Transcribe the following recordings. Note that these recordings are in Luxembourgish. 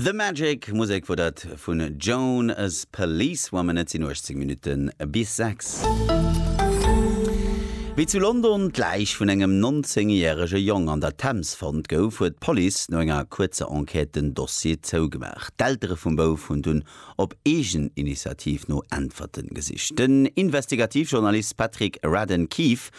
The Magic, Musek wor dat vun Joan as Policewoman. Et sin 18 Minuten bis 6. Wéi zu London d'Läich vun engem 19 järege Jong an der Thames fonnt gouf, huet d'Police no enger kuerzer Enquête den Dossier zougemaach. D'Eltere vum Bouf hunn dunn op eegen Initiativ no Äntwerten gesicht. Den Investigativjournalist Patrick Radden Keefe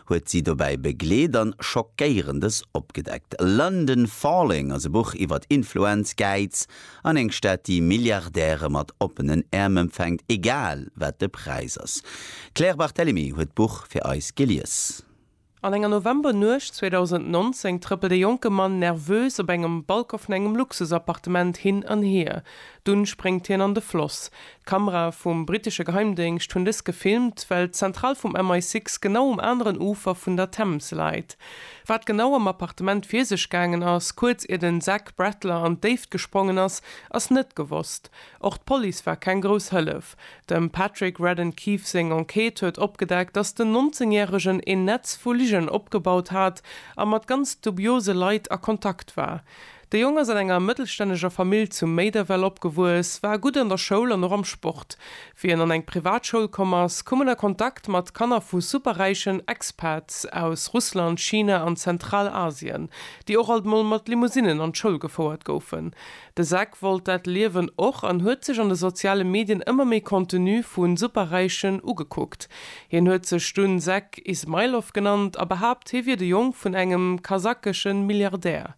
huet si dobäi begleet an Schockéierendes opgedeckt. London Falling ass e Buch iwwert Influenz, Gäiz an eng Stad, déi Milliardäre mat oppenen Äerm empfänkt, egal wat de Präis ass. D'Claire Barthelemy huet d'Buch fir eis gelies. An enger Novembernuecht 2019 trëppelt e jonke Mann nervös op engem Balcon vun engem Luxusappartement hin an hier. Dunn spréngt hien an de Floss. D'Kamerae vum brittesche Geheimdéngscht hunn dës gefilmt, well d'Zentral vum MI-Six genau um aneren Ufer vun der Thames läit. Wat genau am Appartement vir sech gaangen ass, kuerz ier den Zach Bradler an d'Déift gesprongen ass, ass net gewosst. Och d'Police war keng grouss Hëllef. Dem Patrick Radden Keefe seng Enquête huet opgedeckt, dass den 19 Järegen een Netz vu Ligen opgebaut hat a mat ganz dubiose Leit a Kontakt war. De Jong ass an enger mëttelstänneger Famill zu Méiderwell opgewuess, war gutt an der Schoul an och am Sport. Wéi en an eng Privatschoul komm ass, koum en a Kontakt mat Kanner vu superräichen Expats aus Russland, China an Zentralasien, déi och alt mol mat Limousinen an d'Schoul gefouert goufen. De Zack wollt dat Liewen och an huet sech an de soziale Medien ëmmer méi Contenu vu Superräichen ugekuckt. Hien huet sech dunn Sek Ismailov genannt a behaapt, hie wier de Jong vun engem kasakesche Milliardär.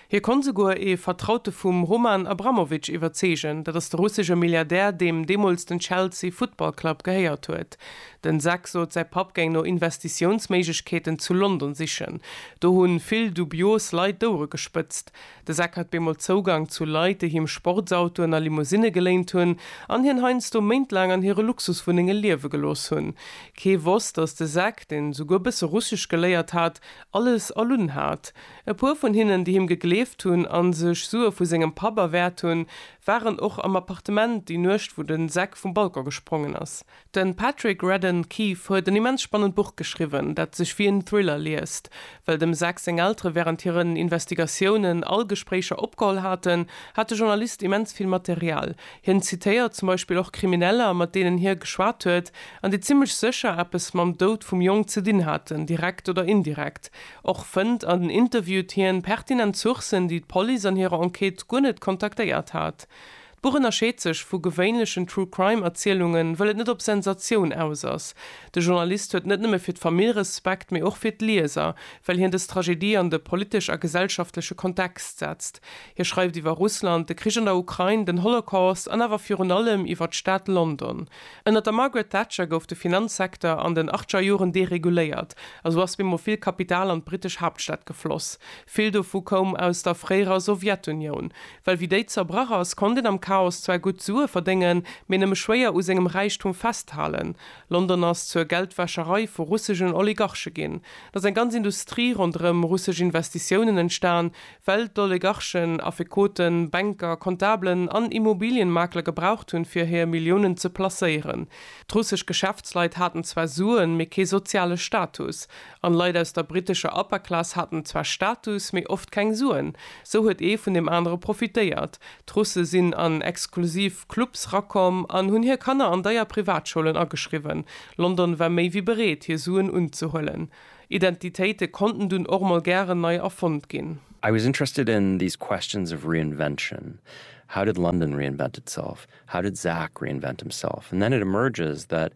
Hie konnt esouguer ee Vertraute vum Roman Abramowitsch iwwerzeegen, dat ass de russesche Milliardär, deem deemools den Chelsea Football Club gehéiert huet. Den Sek sot, säi Papp géing no Investitiounsméiglechkeeten zu London sichen. Do hu vill dubios Leit d'Ouere gespëtzt. De Zak hat bemol Zougang zu Leit, déi him Sportsautoen a Limousinne geléint hunn an hien heiansdo méintlaang an hire Luxuswunnenge liewe gelooss hunn. Kee wosst, datt de Zak, deen souguer bësse Russesch geléiert hat, alles erlunn hat. E puer vun hinnen, déi him gegleeft hunn a sech Sue vu sengem Papp erwäert hunn, waren och am Appartement déi Nuecht, wou de Zak vum Balcon gesprongen ass. Den Patrick Radden Keefe huet en immens spannend Buch geschriwwen, dat sech wéi en Thriller liest. Well dem Zack seng Eltere wärend hiren Investigatiounen all Gespréicher opgeholl haten, hat de Journalist immens vill Material. Hien zitéiert zum Beispill och Krimineller, mat deenen hie geschwat huet, an déi zimmlech sécher eppes mam Doud vum Jong ze dinn haten, direkt oder indirekt. Och fënnt an interviewt hien pertinent Sourcen, déi d'Police an hirer Enquête guer net kontaktéiert hat. D'Buch ënnerscheet sech vu gewéinlechen True Crime Erzielungen, wëll et net op Sensatioun aus ass. De Journalist huet net nëmme fir d'Famill Respekt, mee och fir d'Lieser, well hien dës Tragedie an de politesch a gesellschaftleche Kontext setzt. Hie schreift iwwer Russland, de Krich an der Ukrain, den Holocaust an awer virun allem iwwer d'Stad London. Ënnert der Margaret Thatcher gouf de Finanzsektor an den Achtscher Joren dereguléiert a sou ass bemol vill Kapital an d'britesch Haaptstad gefloss. Vill dovu koum aus der fréierer Sowjetunioun. Well wéi déi zerbrach ass, konnt een am Chaos zwar gutt Sue verdéngen, mee nëmme schwéier u sengem Räichtum festhalen. London ass zur Geldwäscherei vu russegen Oligarche ginn. Et ass eng ganz Industrie ronderëm russesch Investitiounen entstan, well d'Oligarchen Affekoten, Banker, Comptabelen an Immobilienmakler gebraucht hunn, fir hir Milliounen ze placéieren. D'russesch Geschäftsleit haten zwar Suen, mee kee soziale Status. An Leit aus der britescher Upper Class haten zwar Status, mee oft keng Suen. Sou huet ee vun deem anere profitéiert. D'Russe sinn an exklusiv Clubs rakomm an hunn hir Kanner an deier Privatschoulen ageschriwwen. London war méi wéi bereet, hir Suen unzehuelen. Identitéite konnten dunn och mol gären nei erfonnt ginn. I was interested in these questions of reinvention, how did London reinvent itself, how did Zach reinvent himself? And then it emerges that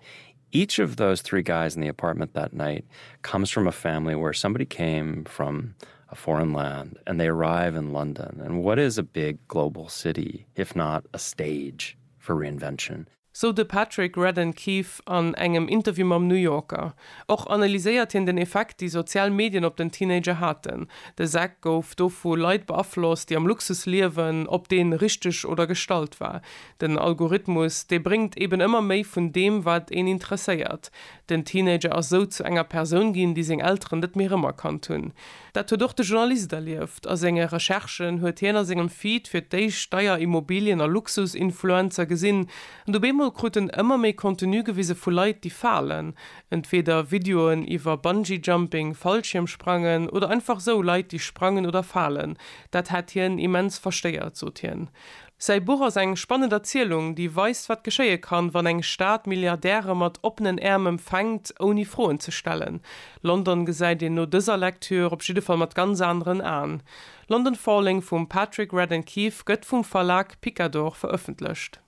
Each of those three guys in the apartment that night comes from a family where somebody came from a foreign land and they arrive in London and what is a big global city if not a stage for reinvention. Sou de Patrick Radden Keefe an engem Interview mam New Yorker. Och analyséiert hien den Effekt, déi sozial Medien op den Teenager haten. De Zach gouf do vu Leit beaflosst, déi am Luxus liewen, ob dee richteg oder gestallt war. Den Algorithmus, dee bréngt eben ëmmer méi vun deem, wat een interesséiert. Den Teenager ass esou zu enger Persoun ginn, déi seng Elteren net méi erëmerkannt hunn. Dat huet och de Journalist erlieft. A senge Recherchen huet hien a sengem Feed fir d'éischt deier Immobilien a Luxus-Influencer gesinn. An du beemol krut en ëmmer méi Contenu gewise vu Leit, déi falen. Entweeder Videoen iwwer Bungee-Jumping, Fallschiermsprangen, oder einfach esou Leit, déi sprangen oder falen. Dat hätt hien immens verstéiert, sot hien. Säi Buch ass eng spannend Erzielung, déi weist, wat geschéie kann, wann eng Stad Milliardäre mat oppenen Äerm empfänkt, ouni Froen ze stellen. London gesäit een no dëser Lektür op jidde Fall mat ganz aneren Aen. London Falling vum Patrick Radden Keefe gëtt vum Verlag Picador verëffentlecht.